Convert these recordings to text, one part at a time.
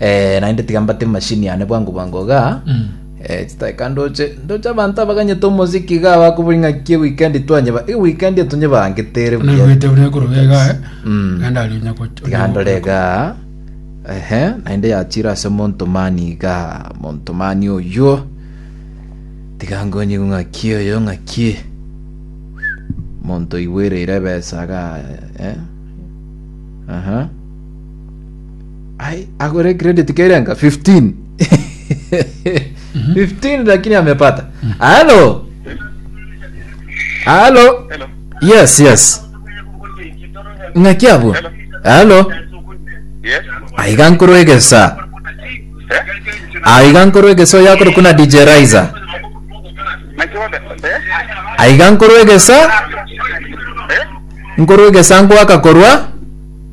Eh, naende tiga mbate machine yane bwango bwango igaa Mm. Eh, chitaeka ndoche ndoche abanto abaganyete omoziki igaa bakobori ng'a ki weekend twanyeba i weekend etonyebangete ere buya nagwete buna korobega eh Mm. naende ari onya gocha tiga ndore igaa ehe naende yachire ase montomani igaa montomani oywo tiga nkonyigu ng'aki oyo ng'aki monto igwereire ebesa igaa eh aha Ai, agore credit kairenga 15 15 lakini amepata halo halo Hello. yes yes ng'aki abwo Hello. halo Yes. aiga nkoro egesa Eh? aiga nkoro egesa oyo akore kuna dj riser Naki wanda? Eh? aiga nkoro egesa Eh? nkoro egesa nkwaka korwa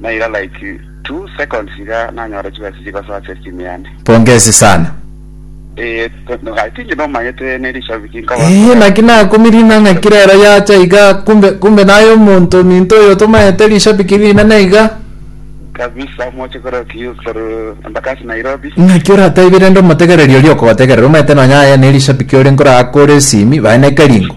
naira like two seconds iga nanyora chibesa chiria gosoa ase esteem yane. Pongezi sana. Ee, ai tinche nomanyete ne rishabiki nkaba Eeh, naki nakumirina ng'a kira ero yacha iga kumbe kumbe naye omonto ominto oyo tomanyete rishabiki rinene iga. kabisa moche korwa kiu korwa Embakasi Nairobi. Naki orataibie rende omotegereri oria okogotegerera omanyete nonye aye ne rishabiki ore nkoraa kore esimi baye ne keringo.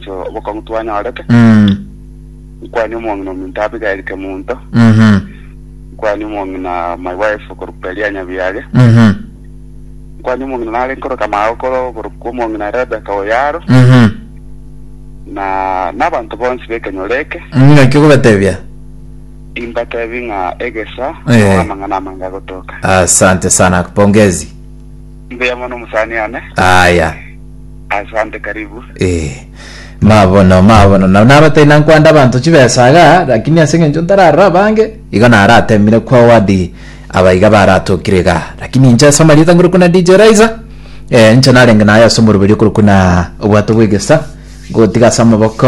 omochie obokong'u twanyorete. Mm. Nkwanie omong'ina ominto Abigaili kemunto. Mhm. Nkwanie omong'ina my wife okorokwa Elia Nyabiage. Mhm. Nkwanie omong'ina nare nkoroka Maagokoro okorokwa omong'ina Rebecca Oyaro. Mhm. Na nabanto bonsi bekenyoro eke. Ng'aki okobatebia? Imbatebi ng'a egesa Eh. nao amang'ana amange agotoka. Asante sana. Pongezi. Mbuya mono mosani ane. Aya. Asante karibu. Eh. Mabono mabono na nabatari nankwanda abanto chibesa iga lakini ase eng'encho ntararora abange igo naratemire kwa wadi abaiga baratokire iga lakini inche ase amarieta ngorokwa na DJ Raiza eh, inche narenge naye ase omoroberi okorokwa na obwato bw'egesa ngotiga ase amaboko